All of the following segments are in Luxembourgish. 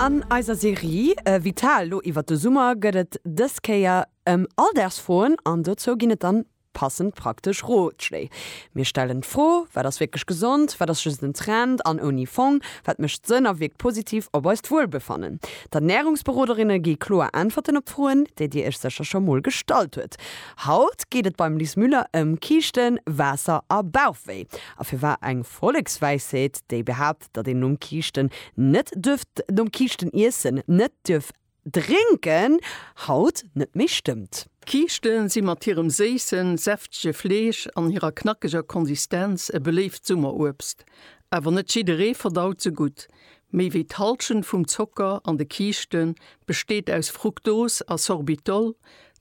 An eiser Serie Vital lo iwwert de Summer gëtt et dës Kéier ëm Alldagsfroen an dozou ginn et dann passend praktesch Rotschléi. Mir stellen d'Fro, Wat ass wierklech gesond? Wat ass just en Trend an ouni Fong? Wat mécht Sënn a wierkt positiv op eist Wuelbefannen? D'Ernärungsberoderinne gi kloer Äntwerten op d'Froen, déi dir iech sécher scho mol gestallt hutt. Haut geet et beim Lis Müller ëm Kiischten, Waasser a Bauchwéi. A firwat eng Vollekswäisheet, déi behaapt, Gesetz, datt een nom Kiischten net duerf, nom Kiischten iessen, net duerf drénken, haut net méi stëmmt. D'Kiischte si mat hirem séissen, säftege Fleesch an hirer knackeger Konsistenz e beléift Summeruebst. Awer net jidderee verdaut se gutt. Méi wéi d'Hallschent vum Zocker an de Kiischte besteet aus Fruktos a Sorbitol,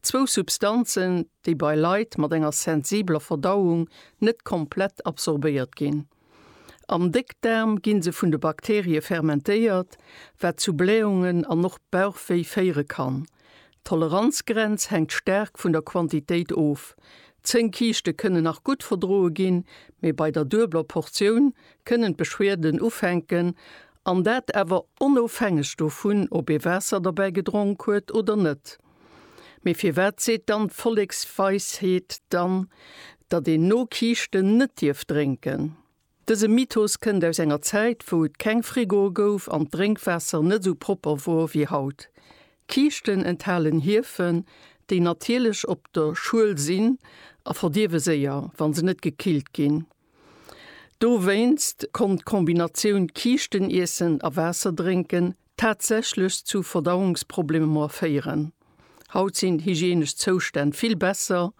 zwou Substanzen, déi bei Leit mat enger sensibeler Verdauung net komplett absorbéiert ginn. Am Déckdaarm ginn se vun de Bakterie fermentéiert, wat zu Blähungen an och Bauchwéi féiere kann. D'Toleranzgrenz hänkt staark vun der Quantitéit of. Zéng Kiischte kënnen nach gutt verdroe ginn, mee bei der duebler Portioun kënnen d'Beschwerden ufänken, an dat awer onofhängeg dovun, ob ee Waasser derbäi gedronk huet oder net. Mee firwat seet dann d'Volleksweisheet dann, datt een no Kiischten net dierf drénken? Dëse Mythos kënnt aus enger Zäit, wou et keng Frigoe gouf an d'Drénkwaasser net esou propper wor wéi haut. Kiischten enthalen Hiefen, déi natierlech op der Schuel sinn a verdierwe séier, wa se net gekillt ginn. Dowéinst konnt d'Kombinatioun Kiischteniessen a Waasser drénken tatsächlech zu Verdauungsproblemer féieren. Haut sinn d'hygienesch Zoustänn vill besser,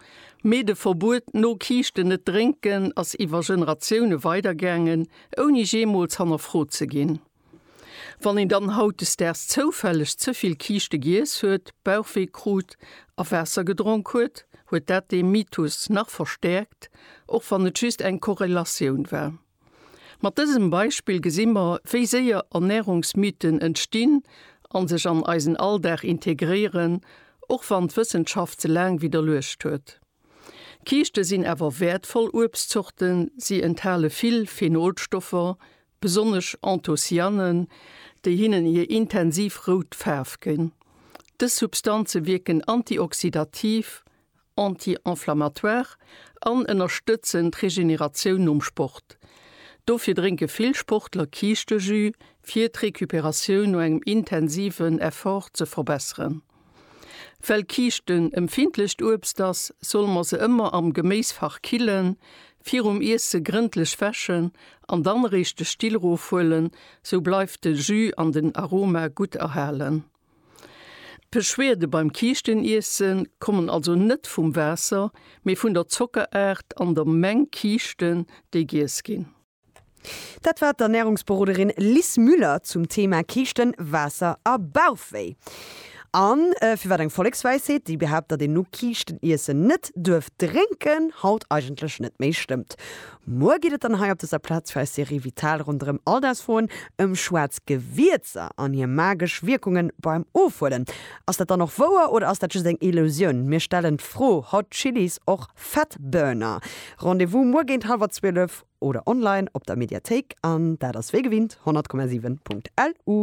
mee de Verbuet, no Kiischten net drénken, ass iwwer Generatioune weidergaangen, ouni jeemools hannerfrot ze ginn. Wann een dann hautdesdaags zoufälleg ze vill Kiischte giess huet, Bauchwee krut a Waasser gedronk huet, huet dat dee Mythos nach verstäerkt, och wann et just eng Korrelatioun war. Mat dësem Beispill gesi mer, wéi séier Ernärungsmythen entstinn a sech an eisen Alldag integréieren, och wann d'Wëssenschaft se laang widderluecht huet. Kiischte sinn awer wäertvoll Uebstzorten, si enthale vill Phenolstoffer, besonnesch Anthocyanen, déi hinnen hir intensiv rout Faarf ginn. Dës Substanze wierken antioxidativ anti-inflammatoire an ënnerstëtzen d'Regeneratioun nom Sport. Dofir drénke vill Sportler Kiischtejus, fir d'Recuperatioun no engem intensiven Effort ze verbesseren. Well Kiischten empfindlecht Uebst ass, solle mer se ëmmer am Geméisfach killen, virum Iesse grëndlech wäschen an dann eréischt de Still rofhuelen, sou bleift de Jus an den Aroma gutt erhalen. D'Beschwerde beim Kiischteniissen kommen also net vum Waasser, mee vun der Zockeraart an der Meng Kiischten, déi giess ginn. Dat war d'Ernärungsberoderin Lis Müller zum Thema Kiischten, Waasser a Bauchwéi. A firwat eng Vollekswäisheet, déi behaapt, datt een no Kiischteniessen net duerf drénken, haut eigentlech net méi stëmmt. Muer geet et dann hei op dëser Plaz fir eis Serie Vital ronderëm Alldagsfroen ëm schwaarz Gewierzer an hir magesch Wierkungen beim Ofhuelen. Ass dat dann och wouer oder ass dat just eng Illusioun? Mir stellen d'Fro, Hot Chillies och Fat Burner? Rendez-vous muer géint hallwer 12 oder online op der Mediathéik an dat ass wéi gewinnt 100,7.lu.